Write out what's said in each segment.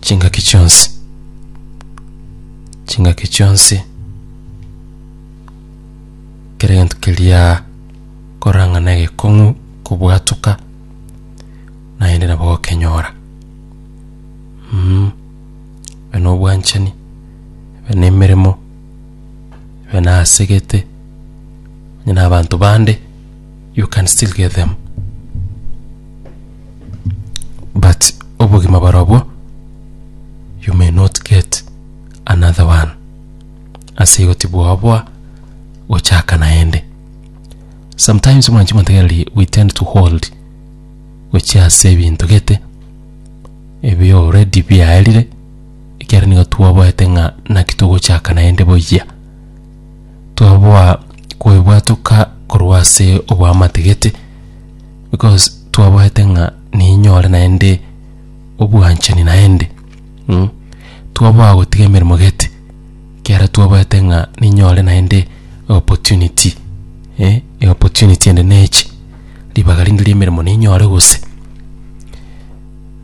chingaki chionsi chingaki chionsi kera gento keria korang'ana egekong'u kobwatoka naende nabo okenyora mm. ebe na obwanchani ebe na emeremo ebe nasegete onye na abanto bande You can still get them. But obogima barobwo you may not get another one. Ase igo tibwaboa gochaka naende. Sometimes mwanchi montegereri we tend to hold gochia ase ebinto gete ebi already biaerire ekiagera nigo twaboete ng'a naki togochaka naende boyia. twaboa kwebwatoka korwa ase obwamatigete because twaboete ng'a ninyore naende obwanchani naende mm, twaboa gotiga emeremo gete ekiagera twaboete ng'a ninyore naende eopportunity eh, eopportunity ende neche ribaga rinde riemeremo ninyore gose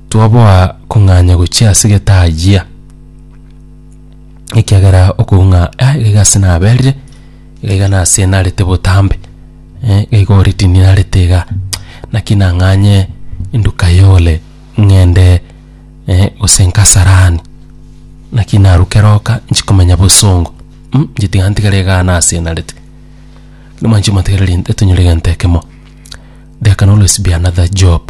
twaboa kong'anya gochia ase egetajia. ekiagera okoung'a ah, iga ase naberire iga iga nase narete botambe eh, iga iga oritini narete iga naki nang'anye induka yole ng'ende eh, gose nkasarani naki naruke roka nchikomenya bosongo mm, chitiga ntigare igaa nase narete Lakini mwanchi motigere rinde tonyore egento ekemo there can always be another job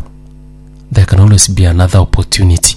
there can always be another opportunity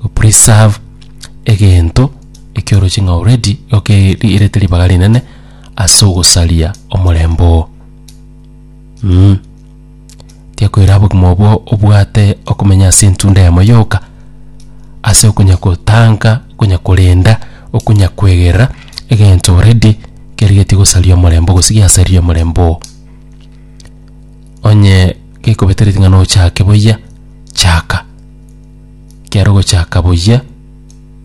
go preserve egento ekioroche ng'a already oke riirete ribaga rinene ase ogosaria omorembe oo mm. Tiakoira obogima obwo obwate okomenya ase entunda yamo yoka ase okonya kotanga okonya korenda okonya kwegerera egento already kerigetie gosaria omorembe gose giasaria omorembe oo onye gekobetereti ng'a nochake buya chaka. kiaro gochaka buya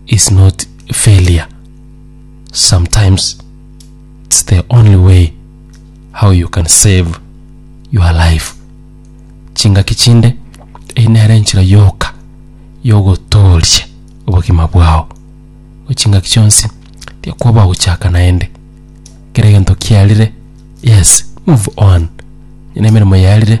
is not failure sometimes it's the only way how you can save your life chingaki chinde eyi nere enchera yoka yogotooria obogima bwao chingaki chionsi tiakoba gochaka naende kera egento kiarire yes move on ena emeremo yarire